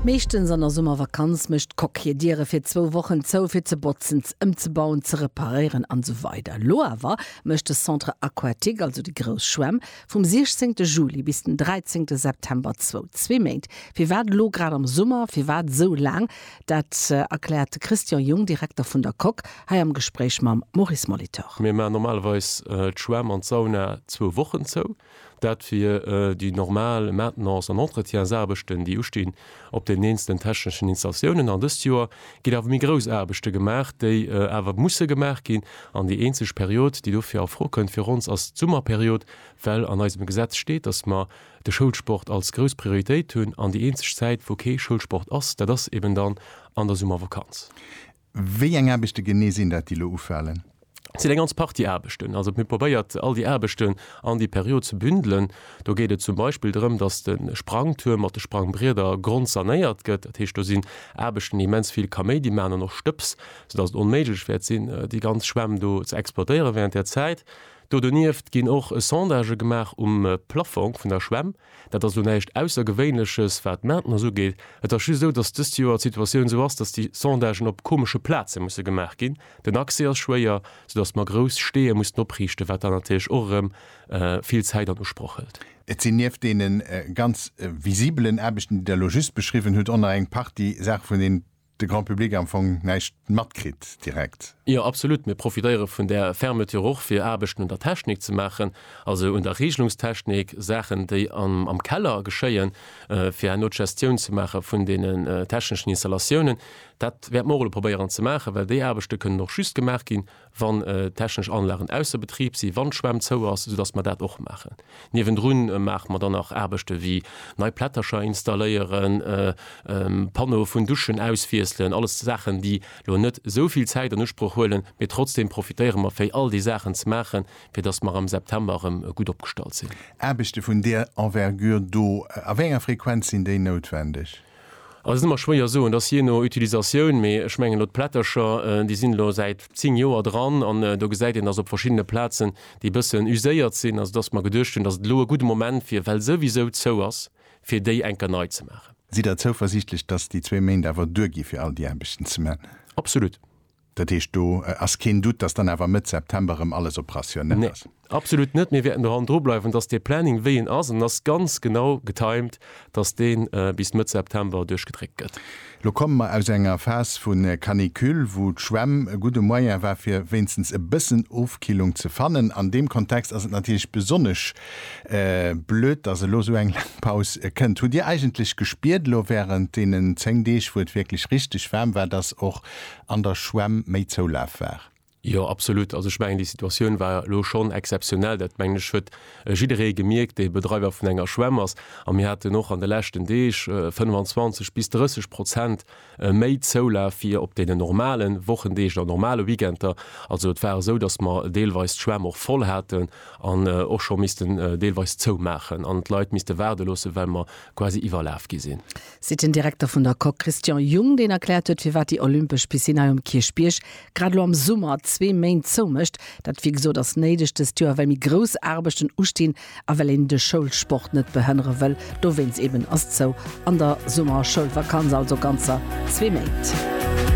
Meeschtens an der Summervakanz mécht d'Coque hir Diere fir zwou Wochen zou, fir ze botzen, ëmzebauen, ze reparéieren an esou weider Elo awer mécht de Centre Aquatique, also déi grouss Schwämm, vum 16 Juli bis den 13 September zou. Zwee Méint. Firwat elo grad am Summer? Firwat esou laang? Dat erkläert de Christian Jung, Direkter vun der Coque, hei am Gespréich mam Maurice Molitor. Mir maachen normalerweis d'Schwämm an d'Sauna zwou Wochen zou. Dat fir déi normal Maintenance an Entretiensaarbechten, déi ustinn op den eenzelnen techneschen Installatiounen. An dëst Joer ginn awer méi grouss Aarbechte gemaach, déi awer musse gemaach ginn. An déi eenzeg Period, déi dofir a Fro kënnt fir ons, ass d'Summerperiod, well an eisem Gesetz steet, dass mer de Schoulsport als grouss Prioritéit hunn. An déi eenzeg Zäit, wou kee Schoulsport ass, dat ass eben dann an der Summervakanz. Wéi eng Aarbechte genee sinn dat, déi elo ufalen? Et sinn eng ganz Partie Aarbechten. Also mir probéiert all déi Aarbechten an déi Period ze bündelen. Do geet et zum Beispill drëm, datt de Sprangtuerm mat de Sprangbrieder grondsanéiert gëtt. Dat heescht, do sinn Aarbechten, déi immens vill Kaméidi maachen an och Stëbs, soudatt et onméiglech wäert sinn, déi ganz Schwämm do ze exploitéiere während där Zäit. Do donieft ginn och Sondagë gemaach um Plaffong vun der Schwämm. Dat ass elo näischt Aussergewéinleches, wat d'Maintenance ugeet. Et ass just esou, datt dëst Joer d'Situatioun esou ass, datt déi Sondagen op komesche Plaze musse gemaach ginn. Den Accès ass schwéier, soudatt mer grouss Steeë mussen opriichten, wat dann natierlech och erëm vill Zäit an Usproch hëlt. Et sinn nieft deene ganz visibelen Aarbechten, déi Der elo just beschriwwen hutt, och nach eng Partie Saache vun deenen, de Grand Public am Fong näischt matkritt direkt. Jo, absolut. Mir profitéiere vun där Fermeture och, fir Aarbechten un der Technik ze maachen, also un der Reegelungstechnik, Saachen, déi am Keller geschéien, fir herno d'Gestioun ze maache vun deenen techneschen Installatiounen. Dat wäerte mer och elo probéieren ze maachen, well déi Aarbechte kënnen och just gemaach ginn, wann technesch Anlagen ausser Betrib sinn, wann d'Schwämm zou ass, soudass mer dat och maachen. Niewendrun maache mer dann nach Aarbechte wéi nei Plättercher installéieren, Panneaue vun Duschen auswiesselen, alles Saachen, déi elo net esou vill Zäit an Usproch huelen, mee trotzdeem profitéiere mer fir all déi Saachen ze maachen, fir dass mer am September erëm gutt opgestallt sinn. Aarbechte vun där Envergure do, a wéi enger Frequenz sinn déi noutwendeg? Ass ëmmer schwéier soen, dass jee no Utilisatioun, mee ech mengen elo d'Plättercher, déi sinn elo säit 10 Joer dran an do gesäit een, dass op verschiddene Plazen déi bëssen uséiert sinn, also dass mer geduecht hunn, dass et elo e gudde Moment wier, well souwisou zou ass, fir déi enker nei ze maachen. Sidd Der zouversiichtlech, dass déi zwee Méint awer duergi fir all déi Aarbechten ze man? Absolut. Dat heescht, do ass keen Doute, dass dann awer Mëtt September erëm alles operationell ass? Nee, absolut net. Mir wäerten doran drubleiwen, dass dee Planning, wéi en ass, an en ass ganz genau getimed, dass dee bis Mëtt September duerchgedréckt gëtt. Elo komme mer aus enger Phas vu Canicule, wou d'Schwämm e gudde Moyen war, fir wéinstens e bëssen Ofkillung ze fannen. An deem Kontext ass et natierlech besonnesch blöd, dass elo esou eng laang Paus kënnt. Hutt Dir eigentlech gespiert elo wärend deenen zéng Deeg, wou et wierklech richteg waarm war, dass och an der Schwämm méi Zoulaf war. Jo, absolut. Also ech mengen, déi Situatioun war elo schonn exzeptionell. Dat mengen ech huet jidderee gemierkt, dee Bedreiwer vun enger Schwämm ass. A mir haten och an de leschten Deeg 25 bis 30 Prozent méi Zoulaf wéi op deenen normale Wochendeeg oder normale Weekender. Also et war esou, datt mer deelweis d'Schwämm och voll haten an och scho missten deelweis zoumaachen an d'Leit misste waarde loossen, well mer quasi iwwerlaf gi sinn. seet den Direkter vun der Coque Christian Jung, deen erkläert huet, firwat déi olympesch Piscine hei um Kierchbierg grad elo am Summer zwee Méint zoumécht. Dat, wéi gesot, ass néideg dëst Joer, well méi grouss Aarbechten ustinn a well een de Schoulsport net behënnere wëll. Dowéinst eeben ass zou an der Summerschoulvakanz, also ganzer zwee Méint.